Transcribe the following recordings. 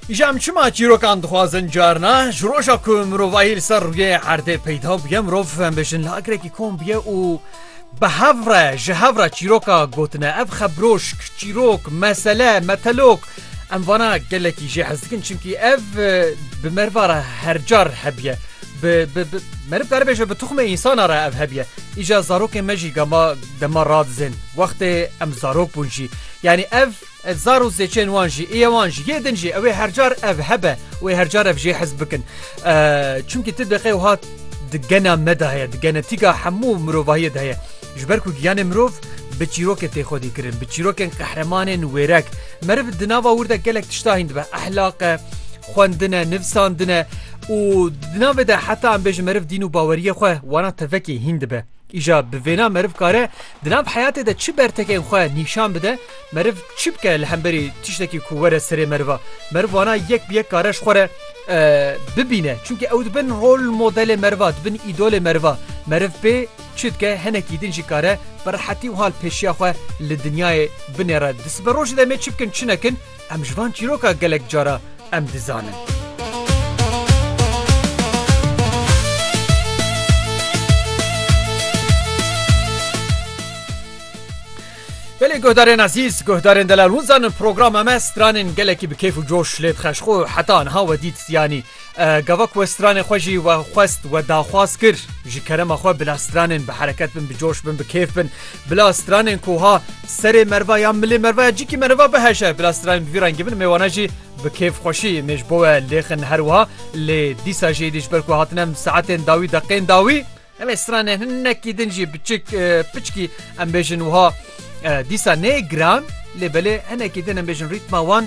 Îşa em çima çîrokan dixwazin carna ji roja ku mirovahî li ser rûyê erdê peyda bûye mirov em bêjin li akirekî kom bûye û bi hevre ji hevra çîroka gotine ev xebroşk çîrok mesele metelok em vana gelekî jê hez dikin çimkî ev bi mervara hercar hebiye merib kar bêje bi tuxmê însana re ev hebiye îja zarokê me jî gama dema radizên wextê em zarok bûn jî yanî ev Ev zar û zêçên wan jî ê wan ji yê din jî ew ê her car ev hebe û ê her car ev jê hez bikin. Çimkî tu diqê wiha di gena me de heye, di genetîka hemû mirovahiyê de heye. Ji ber ku giyanê mirov bi çîrokê tê xwedî kirin, bi çîrokên qehremanên wêrek. Meriv di nava wir de gelek tişta hîn dibe, ehlaq e, xwendin e, nivsandin e û di navê de heta em bêjin meriv dîn û baweriyê xwe wana tevekê hîn dibe. Îja bi vêna meriv kare di nav heyatê de çi bertekên xwe nîşan bide, meriv çi bike li hemberî tiştekî ku were serê meriva. Meriv wana yek bi yek kare ji xwe re bibîne çunke ew dibin rol modelê meriva, dibin îdolê meriva. Meriv pê çi dike hinekî din jî kare bi rehetî wiha li pêşiya xwe li dinyayê binêre. Di siberojê de em ê çi bikin çi nekin? Em ji van çîroka gelek cara em dizanin. Belê guhdarên ezîz guhdarên delal hûn zanin programa me stranên gelekî bi kêf û coş lê dixeşxo heta niha we dît siyanî Gava ku we stranê xwe jî we xwest we daxwaz kir ji kerema xwe bila stranên bi hereket bin bi coş bin bi kêf bin bila stranên ku ha serê merva ya milê merva ya cikî merva biheşe bila stranên bi vî rengî bin mêwana jî bi kêf xweşî mêj ji bo we lêxin her wiha lê dîsa jê dî ji ber ku hatinem saetên dawî deqên dawî Em ê stranên hinekî din jî biçik piçkî em bêjin wiha dîsa nê giran lê belê hinekî din em bêjin rîtma wan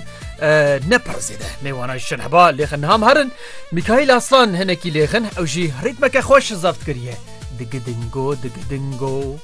ne pir zêde mêwana ji şinheba lêxin niha em herin Mîkaîl Aslan hinekî lêxin ew jî rîtmeke xweş zaft kiriye digidingo digidingo.